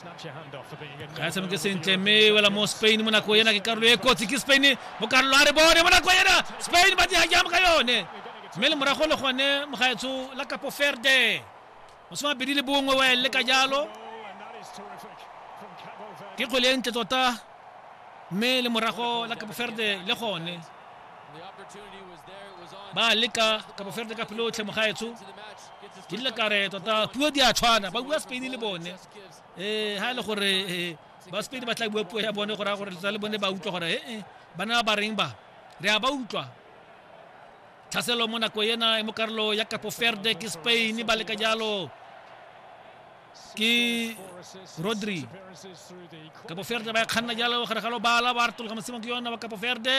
ga e tshameke sentle mme wela mo spain mo nako ena ke karolo e kotsi ke spain mo karolo a re bone mo nako ena spain ba diga jam ka yone mme le morago le gone mogaetsho la kapo ferde mosoma bedi le bongwe wa le ka jalo ke kgwele e ntle tota mme le morago la kapo ferde le gone ba leka kapo ferde ka pelotlhe mogaetsho ke dile kare tota puo di a tshwana ba bua spain le bone ee eh, ha e le gore eh, ba sepedi ba tla bua puo ya bone gore a gore tsa le bone ba utlwa gore ee eh, ba ne ba ba reng ba re a ba utlwa tlhaselo mo nako ena e mo karolo ya capo ferde ke spain ba leka jalo ke rodri capo ferde ba e kganna jalo gare ga lobala ba retologa mosimo ke yona ba capo ferde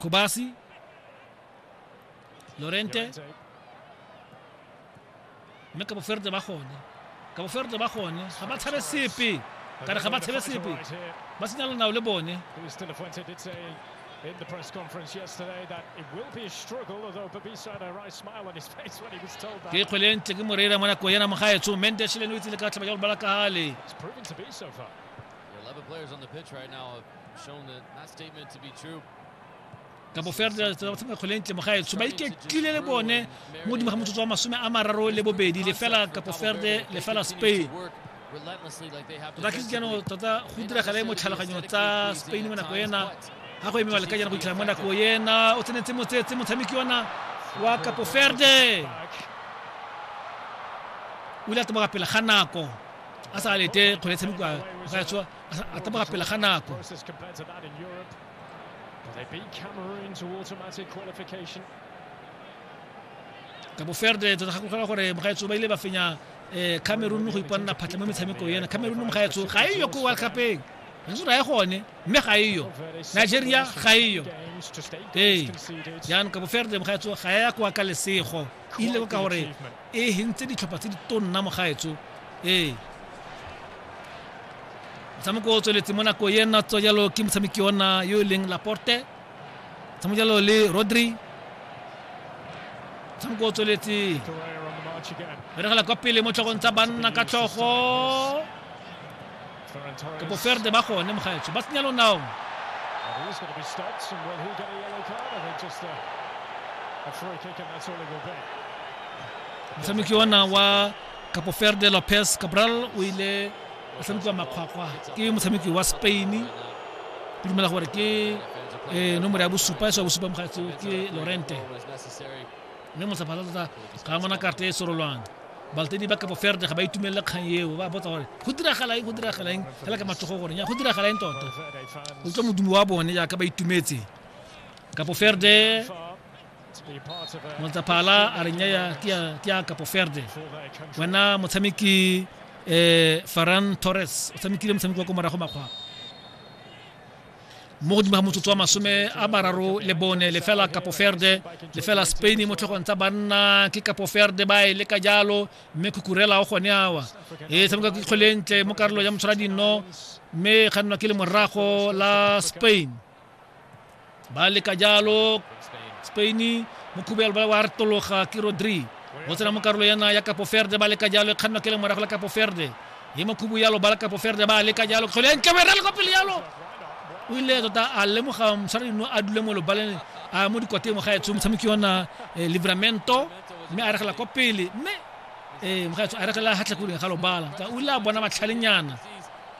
Kubasi, Lorente, mme ka boferde ba gone ka boferde ba gone ga ba tshabe sepe ka re ga ba tshabe sepe ba senya lenao le bone in the press conference yesterday that it will be a struggle, although Babisa had a wry smile on his face when he was told that. It's proven to be so far. The 11 players on the pitch right now kabo ferdinand tsamaya kgwele ntle mo gaetso ba iketlile le bone mo godimo ga motsotso wa masome a mararo le bobedi lefela kapo ferde lefela spain tota tlise jaanong tota go diragale mo tlhaloganyo tsa spain mo nako ena ga go emewa le ka jaana go itlhela mo nako ena o tsenetse motsetse motshameki ona wa kapo ferde o ile a tsamaya pele ga nako a sa lete kgwele tshamekiwa gaetswa a taboga pele ga nako ka boferde tota gakologelwa gore mogaetso ba ile ba fenya um cameroon go iponela phatlha mo metshameko ena cameroon mogaetso ga e yo ko world cupeng re se raye gone mme ga e yo nigeria ga e yo ee jaanong ka boferde mogaetso ga ya kwa ka lesego ile ka gore e hentse ditlhopha tse di tonna mogaetso ee motshameko o tsweletse mo nako e nna tswa jalo ke motshameki ona yo e leng laporte tshameko jalo le rodri motshameko o tsweletse beregela kwa pele mo tlhogong tsa banna ka tlhogo ke boferde ba gone mogaetsho ba senya lonao motshameki ona wa capoferde lopez cabral o ile a tshamekiwa makgwakgwa ke motshameki wa spain ke dumela gore ke eh, nomoro ya bosupa e sa bosupa mogatsi ke lorente mme mosaphatsa tota ga a mona karte e sorolwane Balatedi ba kabo Verde ga ba itumelele kgang eo, ba botsa gore go diragala eng, go diragala eng, fela ka matsogo gore nya go diragala eng tota. O tswa modumo wa bone jaaka ba itumetse. Kabo Verde Motsaphala a re nyaya ke ya Kabo Verde. Wena motshameki eh Ferran Torres o tshamekile motshameko wa ko morago makgwapa. mo godimo ga motsotso wa masome a mararo le bone lefela kapo ferde lefela spain mo tlhogong tsa banna ke kapo ferde ba e leka jalo mme khukurela o gone awa e tshameka ke kgolentle mo karolo ya motshwara dinno mme ga nna ke le morago la spain ba leka jalo spain mo khubelo ba wa retologa ke rodri o tsena mo karolo yana ya kapo ferde ba leka jalo e kgannwa ke le morago la kapo ferde ye makhubu yalo balakapo ferde ba leka jalo kgole entle o e rale kwa pele yalo o ile tota a lemoga mosarino a dule mo lobaleng a mo dikwateng mo gaetsho motshameki ona eh, livramento mme a regela kwa pele mme ee mogaetsho a regela gatlhakoleng ga lobala ka o ile a bona matlhalenyana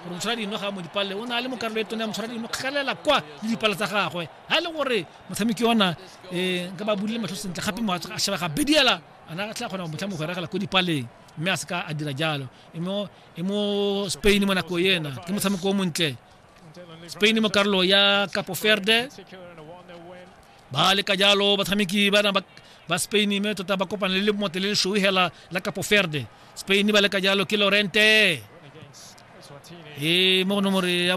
gore motshwara dino ga mo dipalele o ne a le mo karolo e tone ya motshwara dino kgelela kwa le dipale tsa gagwe ga e le gore motshameki ona um nka ba bulile matlho sentle gape mogatso a sheba ga bediela ana tla kgona go motlha mo go regela ko dipaleng mme a se ka a dira jalo e mo e spain mo nako ena ke motshameko o montle spain mo karolo ya capo verde ba leka jalo batshameki bana ba spain mme tota ba kopana le mote le leshoe hela la capo verde spain ba leka jalo ke lorente e mo nomore ya